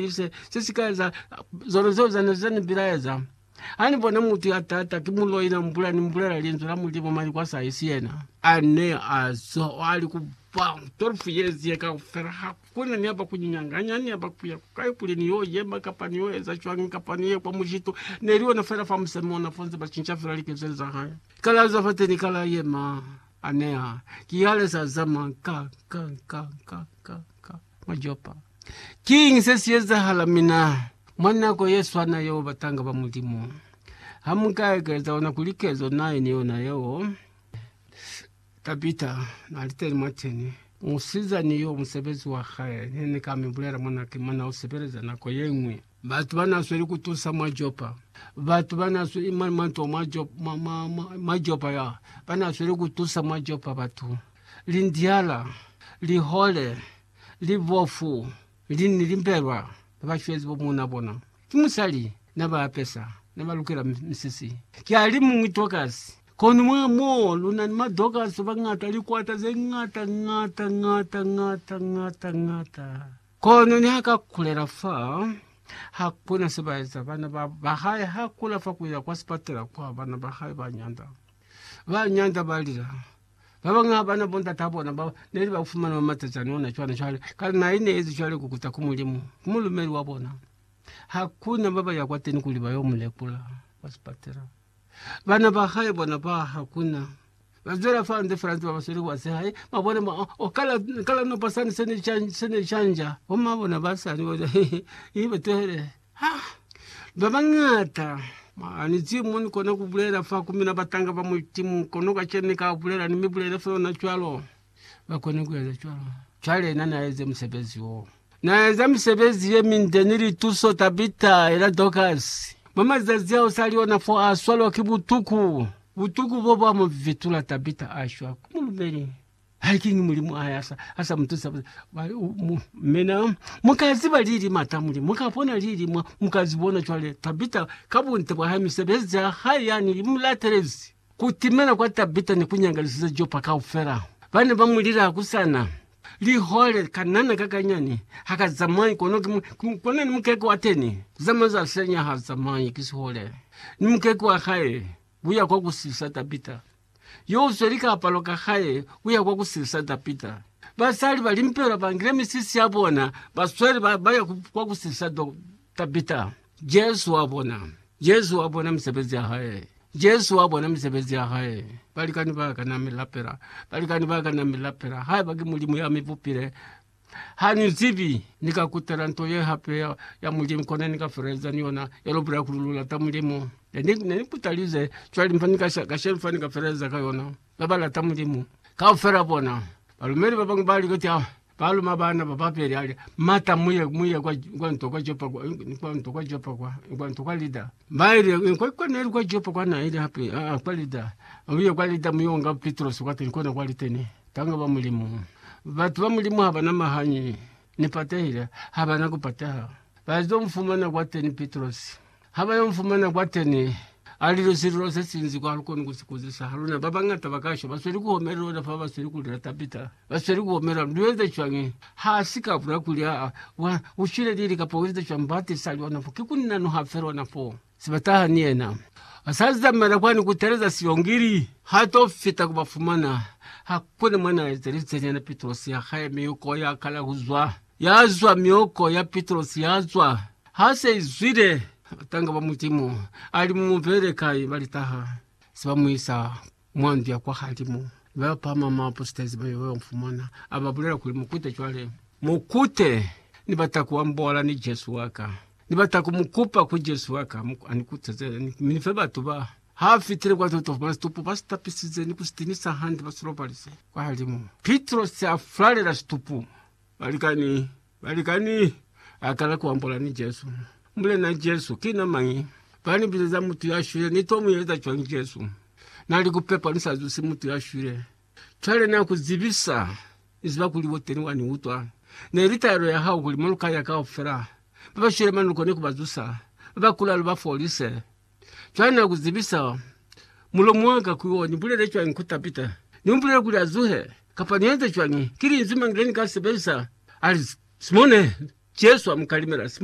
Ki se, se si ka eza zona zeo zane ze ni bilaeza. Ha ni bona mutu ya tata, ki muloi, na mbula, ni mbulela Linzwi la Mulimu, mali kwa sa isi yena. A ne a zwa o ali ku ba 12 yezi ye kaufela, ha ku na ni aba ku nyanganya, ni aba ku ya ku kai, kuli ni yo yema, kapa ni yo eza cwañi, kapa ni ye kwa mujitu. Ne li ona fela fa musemi ona, fo nze ba cinca fela likezeli za hae. Ka la zwa fateni, ka la yema. A neha ki hale sa zama ka, ka, ka, ka, ka, ka, mwa Jopa. Kiñi se si ezahala mina mwa nako ye swana yeo, batanga ba Mulimu? Ha mu ka ekeza ona kuli kezo na ine yona yeo, Tabita na li teni mwateni, musizani yo, musebezi wa hae, ne ni ka mi bulela mwanake, mona u sebeleza nako ye ñwi. Batu ba n'a sweli ku tusa mwa Jopa. Batu ba n'a sweli mwa manto mwa Jopa, mwa Jopa ya ba n'a sweli ku tusa mwa Jopa batu. Lindiala, lihole, libofu, lini limbelwa na ba shwezi bo muuna bona. Ki musali na ba apesa, na ba lukela misisi. Ki a li muñwi Dokasi. Kono mwa moo lu na ni ma Dokasi ba ngata, likwata ze ngata ngata ngata ngata ngata ngata. Kono niha ka kulela fa, ha ku na se ba eza. Bana ba, ba hae ha kula fa ku ya kwa sipatela kwa bana ba hae ba nyanda. Ba nyanda ba lila. Ba bañwi ha ba na bondata bona ba ne li ba fumana mwa matacani ona cwana cwale, kale na ine ezi cwale ku kuta ku Mulimu, ku mulumeli wa bona. Ha ku na ba ba ya kwateni kuli ba yo mu lekula kwa sipatela. Bana ba hae bona ba hakuna. Ba zwela fande fela nze ba ba sweli kwa se hae. Ba bona ma, o kala, kala nopa sani se ne chan, se ne chanja. Bo ma bona ba sani ba za, i ba tuhele. Ha! Ba bangata. Ma, ni zi mo ni kona ku bulela fa ku mina batanga ba Mulimu, kono kacenu ni ka bulela, ni mi bulele fa yona cwalo. ba kone ku eza cwalo. Cwale na n'a eze musebezi wo. Na eza misebezi ye minde ni lituso, Tabita, yena Dorkasi. Mwa mazazi ao sa li ona fo, a swalwa ki butuku. Butuku bo bwa mu vitula, Tabita a shwa. Ku mulumeli. Hai, kiñi Mulimu a sa, a sa mu tusa? Ba li, U, mu, mina, mu ka ziba lili m'ata a Mulimu, mu ka bona lili, mwa, mu ka zi bona. Cwale, Tabita, ka bunte bwa hae, misebezi ya hae yani i mu latelezi. Ku timela kwa Tabita ne ku nyangalizize Jopa kaufela. Ba ne ba mu lila ku sa na lihole, kanana ka kanyani ha ka zamai, kono ki, ki, kono ni mukeke wa teni ku zamai za senya ha zamai, ki sihole ni mukeke wa hae ku ya kwa ku silisa Tabita. Yo u sweli kaapalo ka hae ku ya kwa ku silisa Tabita. Basali ba limpelwa ba ngile misisi ya bona, ba sweli, ba, ba ya ku, kwa ku silisa do, Tabita. Jesu wa bona. Jesu wa bona misebezi ya hae. Jesu wa bona misebezi ya hae. Balikani ba ka na mi lapela. Balikani ba ka na mi lapela. Haiba ki Mulimu ya mi bupile, ha ni zibi. Ni ka kutela nto ye hape ya, ya Mulimu, kono ni ka feleleza ni yona. Ya lu bulela kuli lu lata Mulimu. Ne ni, ne ni kutalize. Cwale mfa ni ka, kashenu fa ni ka feleleza ka yona. babalata Mulimu. Kaufela bona balumeli babañwi ba likata baluma baana babapeli, ali, Mata, muye, muye kwa, kwa nto kwa Jopa kwa, kwa nto kwa Jopa kwa, kwa nto kwa Lida. Baile, kwa, kwa neli kwa Jopa kwa na ile hape, a, a, kwa Lida. Uye kwa Lida muyonga Pitrosi kwa teni, kona kwali teni. Tanga ba Mulimu. Batu ba Mulimu habana mahanyi. Ni patehile. Habana kupateha. Bazo mfumana kwa teni Pitrosi. Ha ba yo mfumana kwateni, a lile sililo se sinzi kwa lu koni ku si kuzisa. Ha luna ba bañata ba ka shwa, ba sweli ku homela lona fa ba sweli ku lila Tabita. Ba sweli ku homela, Lu enze cwañi? Ha si ka bula kuli, Aa, wa, u shwile lili kapa u enze cwañi? Ba tiisa lona fo. Ki kuni na nuha fe lona fo, se ba taha ni yena. A sa zamaela kwani ku teeleza silongili. Ha to fita ku ba fumana, ha ku ni mwa na ezelize nyana Pitrosi ha ka yemi yoko ya kala ku zwa. Yazwa myoko ya Pitrosi yazwa. Ha se izwile, batanga ba Mulimu ali mu mubele kai balitaha, se ba muisa mwa ndu ya kwa halimu, mi ba pama mwa bapostezi ba yo, ba mufumana, a ba bulela kuli, Mukute cwale. Mukute! Ni bata ku ambola ni Jesu wa ka. Ni bata ku mu kupa ku Jesu wa ka, a ni kuteze, mi ni fe batu ba. Ha fitile kwa ndu, to fumana situpu ba si tapisize ni ku si tinisa hande, ba si lobalize kwa halimu. Pitrosi a fulalela situpu, Balikani, balikani, a kala ku ambola ni Jesu. Mulena Jesu, ki na mañi? Ba ni bizeza mutu ya shwile. Ni to mu eza cwañi, Jesu? Na li, Ku pepa ni sa zusi mutu ya shwile. Cwale na ku zibisa. Ni ziba kuli wo teni, wa ni utwa. Ne li taelo ya hao kuli maloko aya kaufela, ba ba shwile manuko, ni ku ba zusa, ba ba kulalu ba folise. Cwani kuzibisa mulomo waka kuli o nibulele cwañi ku Tabita? Nimubulela kuli azuhe, kapa nienze cwañi? Ki linzwi mañi lenika lisebelisa hali Simone? Jesu amukalimela, Simone!